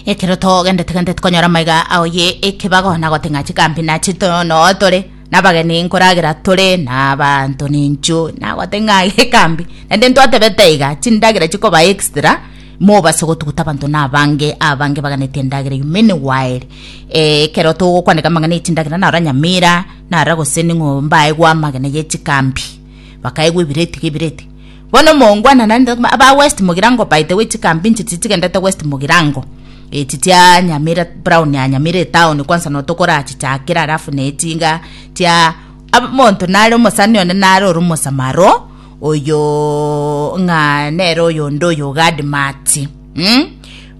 ekero togendete gende tokonyora maiga ao ye ekebago na goting'a chikambi na chitono tore nabageni nkoragera tore na abanto ninchu na goting'a gekambi naende ntwatebete iga chindagera chikoba extra mobase gotuguta abanto na abange abange baganeti endagera you many while ekero togokwaneka amang'ana ye chindagera naro nyamira nara gose ning'o mbaegwe amagena ye chikambi bakaegwa ebireti ge ebireti Bono mongwanananete koma aba west mogirango by the way chikambi inche tichi chigendete west mogirango echi chia nyamira brown ya nyamira etown kwansa notokorachichakera alafu ne chinga chia ab- monto nare omosani one nare ore omosamaro oyo ng'a nere oyonde oyo ogadi machi mm?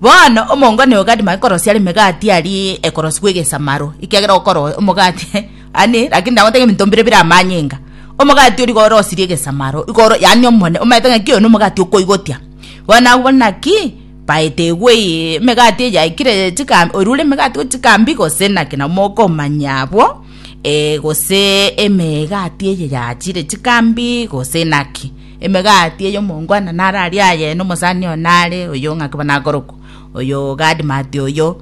bono omongwana oyo ogadi machi korosia are emegati aria ekorosiwa egesamaro ekiagera okoro omogati Ani, lakini ndagotebia ebinto mbire bire amanyinga. Omogati o rigoro osirie egesamaro igoro, yaani omone, omanyete ng'a ki oyo nomogati okoigotia. Bono nabu bono naki baete igwe eye emegati eye yaikire chika oria ore emegati gochia chikambi gose naki nabo mokomanya abwo, eh, gose emegati eye yachire chikambi gose naki. Emegati eye omongwana nararie aye nomosani oyo nare oyo ng'aki bono akorokwa oyo Gad Mati oyo.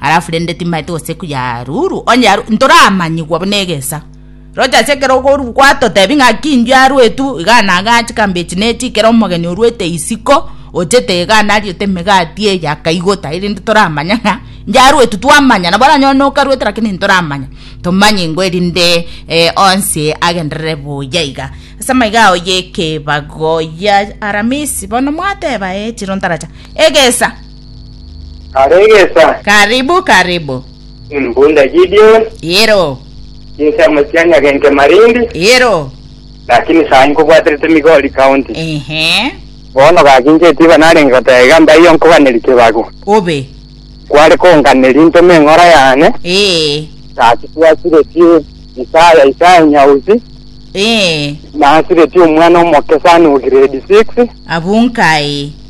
alafu rende timaete gose kuyaruru onye yaru ntoramanyigwa buna egesa rocha ase ekero okoru gwatotebi ng'a kindu yaruetu iga nagachi kambechi nechi ekero omogeni oruete isiko ochete iga nariote emegati eye akaigota erinde toramanya ng'a yaruetu twamanya nabo oranyore nokaruete lakini ntoramanya tomanye ngwe erinde eh, onsi agenderere buya iga ase amaiga ao yekebago ya aramisi bono mwateba eh chiro ntaracha egesa Karegesa. Karibu, karibu. Mbunda Gideon. Ero. Chinsemo chia Nyagenke Malindi. Ero. Lakini saa hii nkobwaterete Migori County. Ehe. Bono gaki inche etiba narenge goteba iga mbaiyo nkoganeri kibagu. Obe. Kware konganeri ntome eng'ora yane. Ee. Gaki twasireti Isaya Isaya Nyausi. Ee. Nasireti omwana omoke sani o grade six. Abunkai.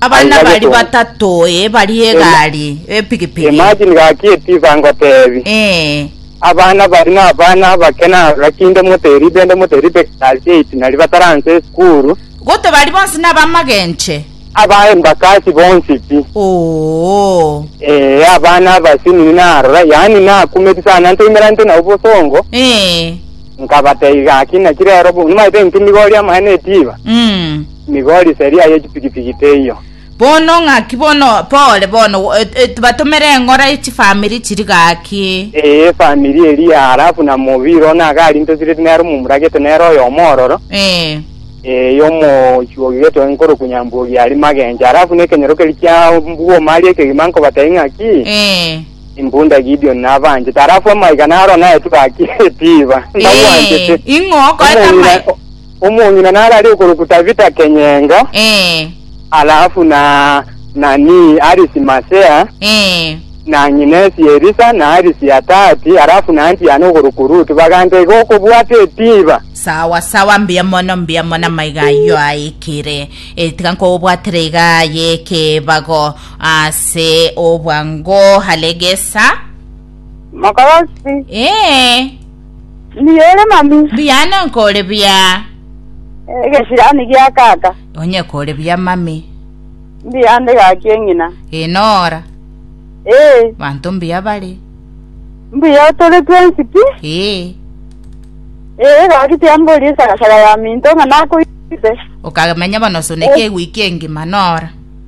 Abana Aiga baria getonga. batato ee baria egari epikipiki. Imagine gaki etiba ngotebi. Eh. Abana bari na abana abakena gaki inde moteribe inde moteribe class 8 nari bataranse esukuru. Gote bari bonsi na bamagenche. Abaye mbakasi bonsi pi. Oo. Ee abana abasinini narora yaani nakumeti sana ntoimera nte nabo bosongo Eh. nkabatei gaki naki rero bu- nimaete nkindigoria amaene etiba. Mm. Nigo rise eria ye chipigipigi teiyo. Bono ng'aki bono pore bono batomere eng'ora ye chifamiri chiri gaki? Ee, efamiri eria, halafu na mobiri one ake arintosireti nere omomuragete nere oyomo ororo, Ee, ee, yomochuogigete one nkorokwa Nyambuogi aria magencho. Halafu na ekenyoro keria kia mbwoma aria ekegima nkobatebia ng'aki, ee, Impunda Gideoni nabanchete. Halafu amaiga naro naetwe gaki etiba, ee, nabwanchete. ing'o okoeta Omong'ina- amai- Omong'ina nare aria okorokwa Tabita Kenyenga, Ee. alafu na nani Arisi Masea, Ee. na ng'inesi Elisa, na Arisi Atati, alafu na anti'ane okorokwa Rutu, baganta iga okobwata etiba. Sawa sawa, mbuya mono, mbuya mono, amaiga ayio aikire. E, tiga nkobwatire iga aye ekebago ase obwango. Halegesa. Mokorosi. Ee. Mbuya ore mami. Mbuya ane nkore buya. Egesirani gia kaka. Onye kore buya mami. Mbuya ande gaki eng'ina. Ee nora. Ee. Banto mbuya bare. Mbuya otore twensi pi. Ee. Ee gaki tiambori esagasaga ya minto ng'a nakoite. Okamenya bono soneke egwiki engima nora.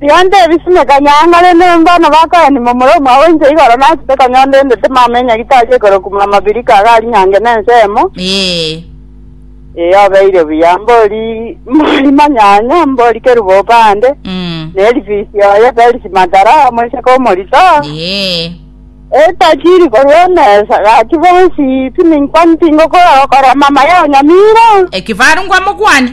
Tiga ntebisime kanyang'ore, nembano bakoyani momura omwabo inche igoro nachete konya onde ndete mama enyagitari ekorokuma amabirika aga aria nyange nensemo. Ee. Ee obeire buya, mbori mbori manyanya, mbori kerubo opande, Mm. na erifisi oye Felix Matara omoiseke omorito. Ee. Etajiri korwa emesa gaki bonsi tininkwa tingokorora mama yao Nyamira. Ekifaru nkwamokwane.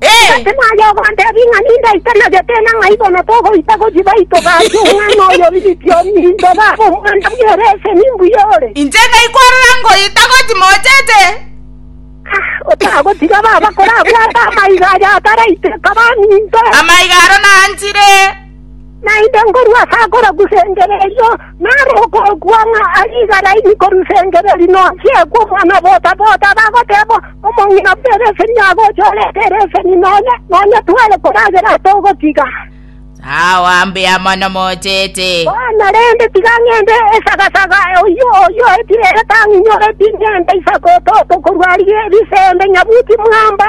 Gose naye ogontebia ng'a nindaitenagete na ng'a ibono togoita gothiĩ baito gaki omwana oyo oirikio ninto baba omwana bwere ase nimbuya ore? Inche naikwarora ngoita gothiĩ mochete. Otagotiga baba korabwate amaiga aya ataraiteka baminto. Amaiga aro nanchire. Naende ngorwa ase agora gusengera erio, naro okookwa ng'a aria igara ime korusengera eri nochie kw'Omwana bota-bota, bagoteeba, Omong'ina buna ere eseni agocha orete ere eseni nonya, nonya tware koragera ase ogotiga. Sawa mbuya mono mochete. Bono rende tiga ng'ende esagasaga oyio oyio etire etang'inyoreti, ng'ende isakototo korwa ri- risembe nyabuti mwamba,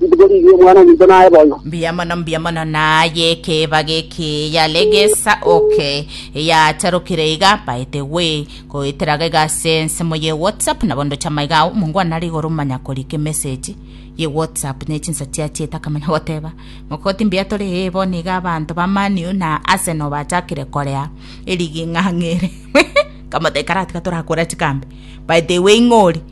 Rituko riria Omwana-o-minto naye bono. Mbuya mono, mbuya mono, naye ekebago eke yare gesa oke yacharokire iga, by the way, goetera gaiga ase ensemo ye WhatsApp, nabo ndoche amaiga ao, mongo one nare igoro manya korika emessage ye WhatsApp ne chinsa chia chieta akamanya goteba mokoti mbuya tore ee bono iga abanto ba Man U na Arsenal bachakire korea erigi ng'ang'ere nkamotebia karatiga torakora chikambe by the way ng'ori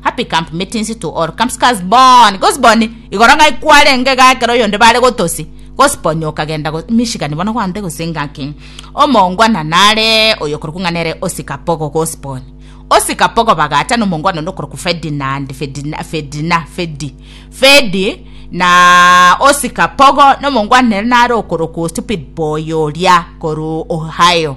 Happy camp meetings to all camps cars born gose born igoro ng'a kwarenge iga ekero oyonde bare gotosi gose born okagenda go mishikani bono gwante gose ngaki omongwana nare oyokorokwa ng'a nere osika pogo gose born osika pogo bagacha nomongwana onde okorokwa Ferdinand Ferdina Ferdina Fedi Fedi na osika pogo nomongwana nere nare okorokwa stupid boy oria korwa Ohio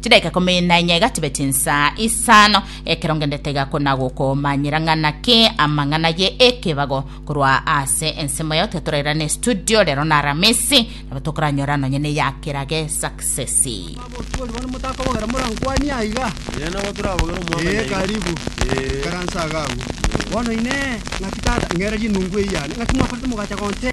Chidaika ikomi na inya igatibeti insaa isano, ekero ngendete iga kona gokomanyera ng'a naki amang'ana ye ekebago korwa ase ensemo yao, tiga torairane studio rero na aramisi, nabo tokoranyora nonye ne ya kirage success. Abosibori bono motakobogera morankwanie aiga. Ee, nabo torabogere omwaka Ee, nyaige. karibu. Ee. Karansa aga agwo. Bono inee, ng'aki tata, ng'era rinungu eyane, ng'aki mwakorete mogacha gonte?